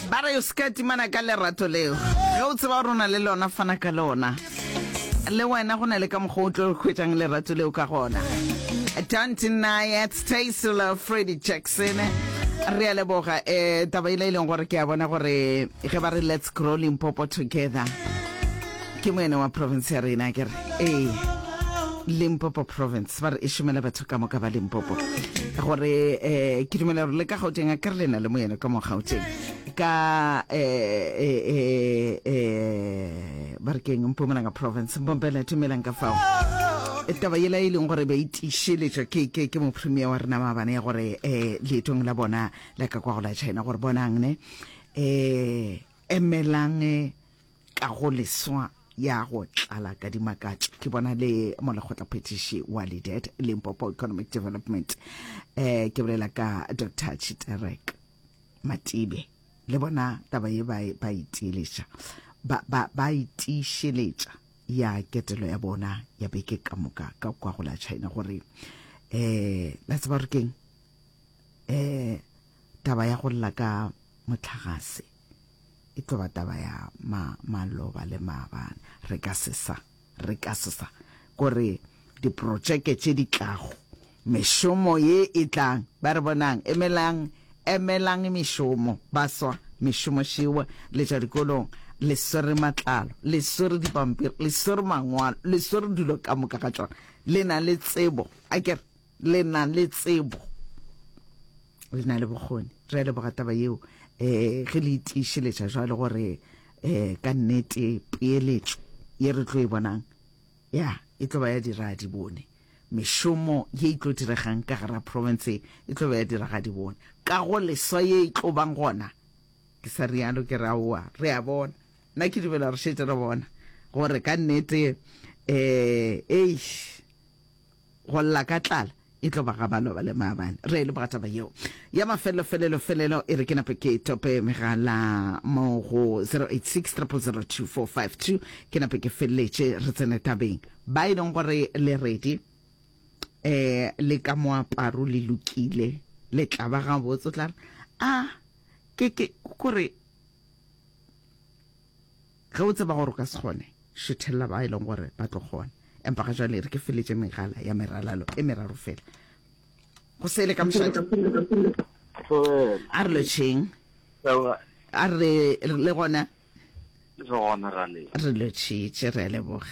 ba re o se ka timana ka lerato leo ge o tseba gore o na le lona fana ka lona le wena go na le ka mokgwa o tlo kgwetsang lerato leo ka gona don't deny it stay solo freddy jackson re a leboga um taba e le e leng gore ke a bona gore ge ba re let's grow limpopo together Ke moena wa province ya rena ke re ee Limpopo province ba re e šomela batho ka moka ba Limpopo gore eh ke dumela gore le ka Gauteng a kere le na le moena ka mo Gauteng ka eh eh eh, eh ba re keng Mpumalanga province Mbombela tumelang ka fao e taba yela e leng gore ba itišeletšwa ke ke ke mopremier wa rena maabane ya gore eh leetong la bona la ka kwa go la China gore bonang ne eh emelang eh, Ka go leswa ya go tlala ka dimakatšo ke bona le mo lekgotla phetiši wa LEADERT, Limpopo Economic Development, eh, ke bolela ka Dr. Chiterek Matibe. Le bona taba ye ba e, ba itiiletša ba, ba, ba itiišeletša ya ketelo ya bona ya beke ka moka ka kwa go la China gore eh la tseba gore keng eh taba ya go lla ka motlhagase e tlo ba taba ya ma maloba le maabane re ka se sa re ka se sa gore diprotšeke tše di tlago mešomo ye e tlang ba re bonang emelang emelang mešomo ba swa mešomo šewa le tša dikolong le swere matlalo le swere dipampiri le swere mangwalo le swere dilo ka moka ga tšona le na le tsebo a kere Le na le tsebo, le na le bokgoni. Re a leboga taba yeo um ge le itiišeletša jwalo gore um ka nnete peeletšo ye re tlo e bonang ya e tlo ba ya diragadibone. Mešomo ye e tlo diregang ka gara profense e tlo ba ya diragadibone. Ka go leswa ye e tlo bang gona, ke sa rialo ke re aowa, re a bona. Nna ke dumela re šetše re bona gore ka nnete um eish. Go lla ka tlala e tlo ba ga ba loba le maabane. Re leboga taba yeo ya mafelelo felelo felelo. E re ke nape ke tope megala mo go 0860002452 ke nape ke feleletše re tsene tabeng. Ba e leng gore le redi eh le ka moaparo le lokile le tla ba gabotse o tla re a ke ke kore Ge o tseba gore o ka se kgone, šethelela ba e leng gore ba tlo kgona. Empa ga jwale re ke feletše megala ya meralalo e meraro fela. Go sele ka mošate. A re lotšheng. A re le gona. Re lotšhitše, re a leboga.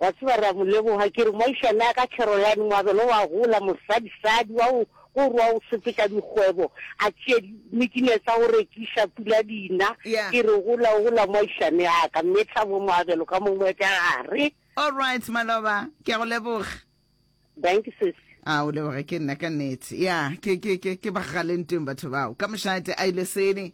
Wa tseba, re a mo leboga. Ke re, Moagišane ya ka Caroline, moabelo wa gola, mosadisadi wa go go rwa go sepetša dikgwebo, a tšee dimikinee tsa go rekiša, pula di na. Yeah. Ke re, Gola, gola, moagišane ya ka. Mme Thabo, moabelo ka mongwe wa tša gare. All right, Maloba. Ke a go leboga. Dankie, sis. A o leboge ke nna ka nnete. Ya, ke, ke, ke, ke ba ga lentweng batho bao. Ka mošate a ile sele.